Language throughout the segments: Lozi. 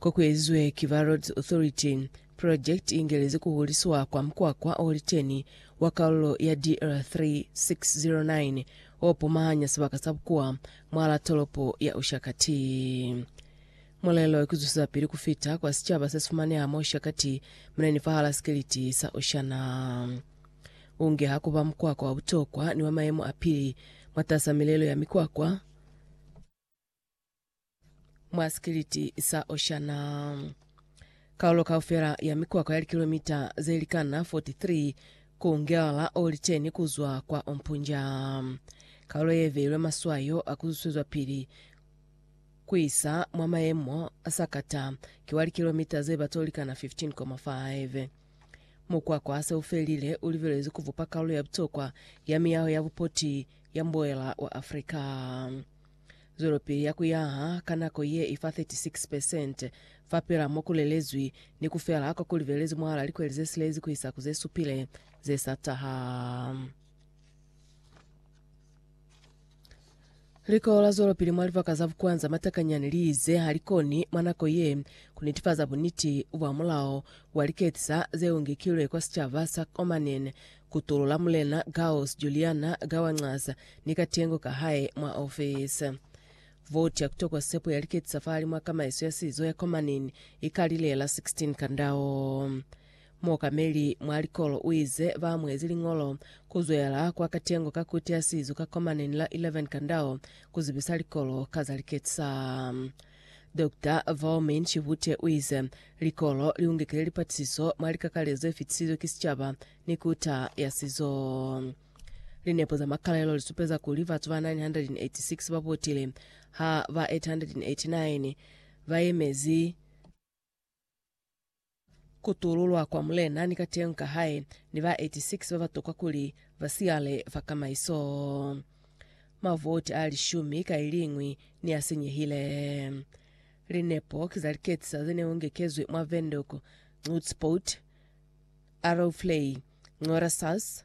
Ko ku ezwe ki ba Roads Authority, project i ingelezi ku huliswa kwa mukwakwa o liteni wa kalulo ya DR 3609 o pumahanya sibaka sa bukuwa mwalaa tolopo ya Ushakati. Mulelo ki zusizapili ku fita kwa sicaba se si fumaneha mwa Ushakati mine ni fahalaa sikiliti sa Oshana. U ngeha ku ba mukwakwa wa butokwa ni wa mayemo a pili mwatasaa milelo ya mikwakwa, mwa sikiliti sa Oshana. Kaulo kaufela ya mikwakwa ya likilomita ze likana 43 ku ngelala o liteni kuzwa kwa Ompunja. Kaulo ye veilwe maswayo a kuzuswezwa pili kuisa mwa mayemo a sakata ki wa likilomita ze bata o likana 15,5. Mukwakwa se ufelile u libelezwe kuvupa kaulo ya butokwa ya miyaho ya bupoti ya mboela wa Afrika. Zwelopili ya ku yaha ka nako ye i fa 36 percent fapil'a mo ku lelezwi, ni ku fela kwa ku libelezi mwahal'a likweli ze silezi ku isa ku ze supile ze sa taha. Likolo la zwelopili mwa libaka za bukwanza matakanyani li ize ha li koni mwa nako ye ku nitifaza buniti bwa mulao wa liketisa ze ungekilwe kwa sicaba sa Omanen Kutulo la Mulena Gauss Juliana ka wa ncaza ni katengo ka hae mwa ofisi. Vouti ya kutokwa sepo ya liketi sa fahali mwa kamaiso ya sizo ya Komanin i kalile la 16 Kandao. Muokameli mwa likolo u ize ba amuhezi liñolo ku zwela kwa katengo ka Kuti ya Sizo ka Komanin la 11 Kandao ku zibisa likolo ka za liketi sa. Dokta Vaomin Chihute uize, Likolo liungekile lipatisiso mwa likakale zefitisizwe ki sicaba ni kuta ya sizo. Linepo za makalelo lisupeza kuli batu ba 986 babotile ha ba 889 bayemezi ku tululwa kwa mulena ni kateñi ka hae ni ba 86 ba ba tokwa kuli ba siyale fa kamaiso. Mavoti a lishumi ka iliñwi ni a sinyehile. Linepo ki za liketisa ze ne ungekezwi mwa Windhoek, Nutspoort, Arrowflay, Ngorasas,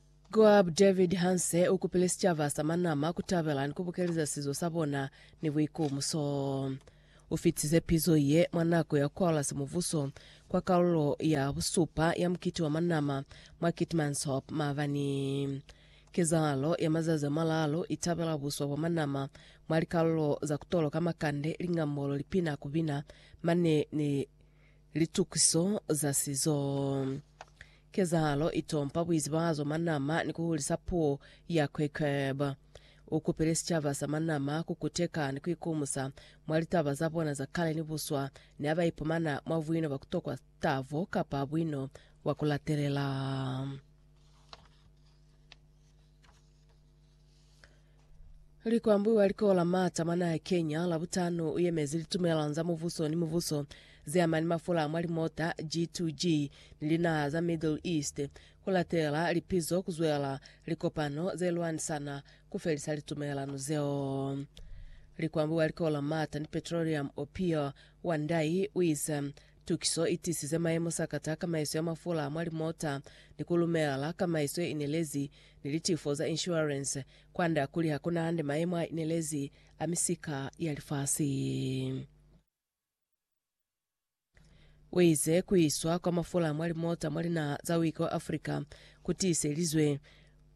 Coab David Hanse u kupile sicaba sa Manama ku tabela ni ku bukeleza sizo sa bona ni buikumuso. U fitize pizo ye mwa nako ya Kuala Semuvuso kwa kalulo ya busupa ya mukiti wa Manama mwa Keetmanshoop maabani. Kezahalo ya mazazi a malalu i tabela buswa bwa Manama mwa likalulo za ku toloka makande, lingambolo, lipina, ku bina mane ni litukiso za sizo. Kezahalo i tompa buizibazo manama ni ku hulisa puo ya Quecheb. U kupile sicaba sa manama ku kuteka ni ku ikumusa mwa litaba za bona za kale ni buswa ni ha ba ipumana mwa buino bwa ku tokwa tavo kapa buino bwa ku latelela. Likwambwi wa likolo la Mata mwa naha ya Kenya Labutano uyemezi litumelano za mubuso ni mubuso zeama ni mafula mwa limota G2G ni linaha za Middle East kulatela lipizo kuzwela likopano zelwanisana kufelisa litumelano zeo. Likwambwi wa likolo la Mata ni Petroleum Opio Wandayi uize Tukiso i tisize mayemo sakata a kamaiso ya mafula a mwa limota ni ku lumelela kamaiso ye inelezi ni litifo za inshuwarense, kwand'a kuli ha ku na hande mayemo a inelezi a misika ya lifasi. U ize ku iswa kwa mafula a mwa limota mwa linaha za Wika wa Afrika ku tiiselizwe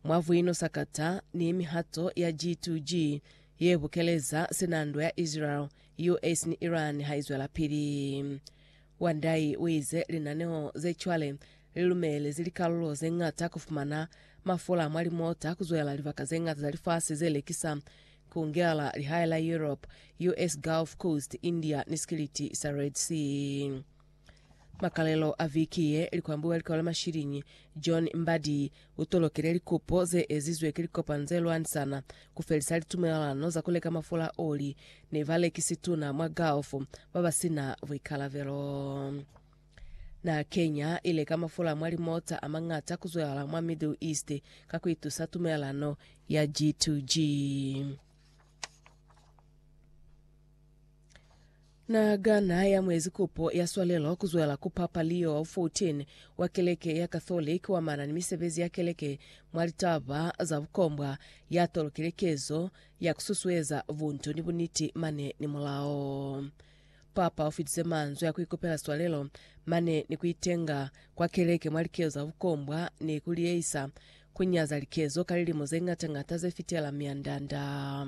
mwa vuino sakata ni mihato ya G2G ye bukeleza sinandwa ya Israel US ni Iran ha i zwelapili. Wang Dai u ize linaneo ze cwale li lumelezi likalulo ze ñata ku fumana mafula mwa limota ku zwela libaka ze ñata za lifasi ze lekisa, ku ngela lihae la Europe, US Gulf Coast, India ni Sikiliti sa Red Sea. Makalelo a viki ye, likwambu mwa likolo la mashilinyi John Mbadi u tolokile likupo ze ezizwe ki likopano ze lwanisana ku felisa litumelelano za ku leka mafula a oli ni balekisi tuna mwa Gulf ba ba si na buikalabelo. Na Kenya i leka mafula mwa limota a mañata ku zwelala mwa Middle East ka ku itusa tumelelano ya G2G. Na ka na ya muezi kupo ya swalelo kuzwela ku Papa Leo 14 wa keleke ya Catholic wa mana ni misebezi ya keleke mwa litaba za bukombwa, ya tolokile kezo ya kususueza buntu ni buniti mane ni mulao. Papa u fitize manzwi a kuikupela swalelo mane ni kuitenga kwa keleke mwa likezo za bukombwa ni kuliyeisa kunyaza likezo ka lilimo zeñata-ñata zefitela mianda-nda.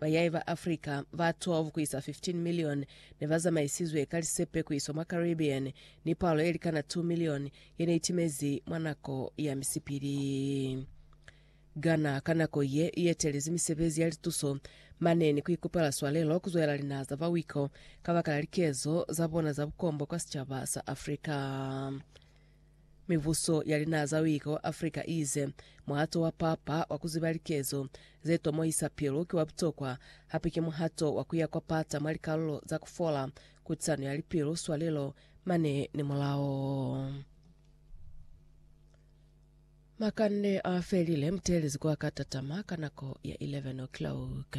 Bayai ba Africa ba 12 ku isa 15 milioni ne ba zamaisizwe ka lisepe ku iswa mwa Caribbean ni palo ye likana 2 milioni ye ne itimezi mwa nako ya misipili. Ghana ka nako ye i etelezi misebezi ya lituso mane ni ku ikupela swalelo ku zwela linaha za ba wiko kabakala likezo za bona za bukombo kwa sicaba sa Africa. Mibuso ya linaha za uika wa Africa iize muhato wa papa wa ku ziba likezo ze tomohisa pilu ki wa butokwa, hape ki muhato wa ku ya kwa pata mwa likalulo za ku fola, kutisano ya lipilu, swalelo, mane ni mulao. Makande a felile, muteelezi ku a ka tatama ka nako ya 11 o'clock.